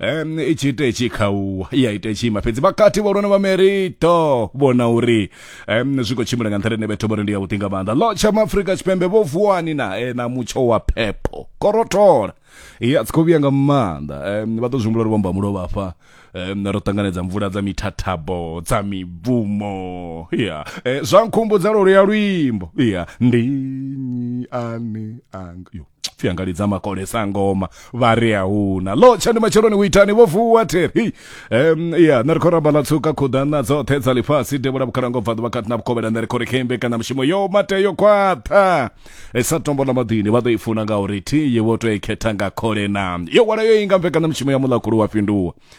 um i tshi ita itshi khauwa i a ita itshi ima fhedzi vhakati vhahulwane vha merito vhona uri um zwi khou tshimbila nga nṱhani ine vhetho vhori ndi yavhuḓi nga maanḓa lo tsha maafrika tshipembe vho vuwani nae na mutsho wa phepho korothola ya tsi khou vhuya nga maanḓa um vha ḓo zwi humbula uri vhomba mulovha afha um ro ṱanganedza mvula dza mithathabo dza mibvumo ya um zwa nkhumbudza lwo luya luimbo ya ndi nnyi ane anga yo pfi anga lidza makole sa ngoma vha ri a huna lo tshani matsheloni u itani vho vuwa theri um ya nṋe ri khou ramba ḽa tsuka khuḓana dzoṱhe dza ḽifhasi devhula vhukhalango bva ḓuvha kati na vhukovhela nṋe ri khou ri khembe kana mushumo yo mate yo khwaṱha e sa tombo ḽa maḓini vha ḓo i funa nga uri thi ye vho tou i khetha nga khole na yo wala yo inga mvekana mushumo ya muḽakulu wa fhinduwa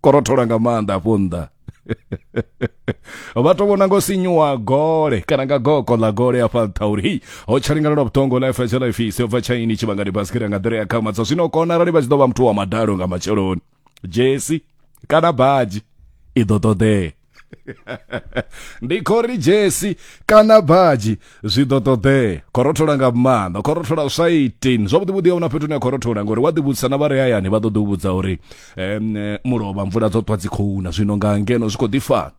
korothola nga maanḓa afho nnḓa vha to vhona ngo sinyuwa gole kana nga goko ḽa gole afha nṱha uri hei ho tsha lingalelwa vhuṱongo life ya tsha life isi bva tshaini tshivhangani basikira nga nḓila ya khama dza zwino kona arali vha tshi ḓo vha muthu wa madalo nga matsheloni jesi kana badzhi i ḓo ṱoḓea ndi khori jesi kana badzhi zwi ḓo ṱoḓea khorothola nga maanḓa khorothola zwa 18 zwavhuḓi vhuḓi a una fhethu ne khorothola ngori wa ḓivhudzisa na vha re hayani vha ḓo ḓi u vhudza uri um mulovha mvula dzo ṱwa dzi khou na zwino nga ngeno zwi khou ḓi fana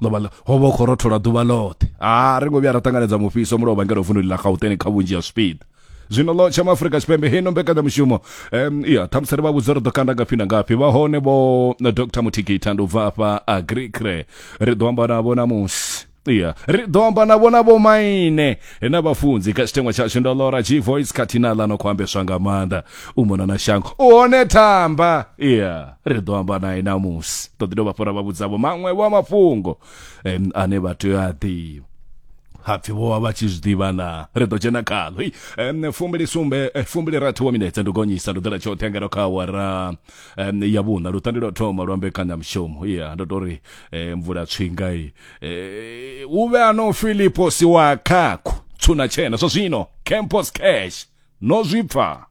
ḽovha ho vha khorothola ḓuvha ḽoṱhe a ri ngo vhuya ra ṱanganedza mufhiso mulovha ngeno vundu ḽa gauteng kha vhunzhi ha zwipiḓa zwino ḽo tsha maafurika tshipembe hino mbekanyamushumo um ya ṱhamusi ri vha vhudza ri ḓo kanda ngafhi na ngafhi vha hone vho dr muthikita ndi u bva afha agricre ri ḓo amba navho namusi ya ri ḓo amba navho na vhomaine na vhafunzi kha tshitengwa tshashu ndo lora g voice khathihi na ḽa no khou ambeswa nga maanḓa u mona na shango u hone thamba ya ri ḓo amba naye namusi ṱoḓi dovha fhora vha vhudzavho maṅwe vho a mafhungo um, ane vha tea a ḓivha hapfi vho vha vha tshi zwi ḓivha na ri ḓo dzhena khalo um, fumbili sumbe eh, fumbili rathu wa minetse ndi gonyisa ndo ḓela tshoṱhe ngeno kha awara um, ya vhuṋa luṱandi lwa thoma lwa mbekanyamushumo ya ndo to ri eh, mvula tswinga i eh, u vhe ano filipo si wa khakho tshuna tshena zwa zwino campus cash no zwi pfa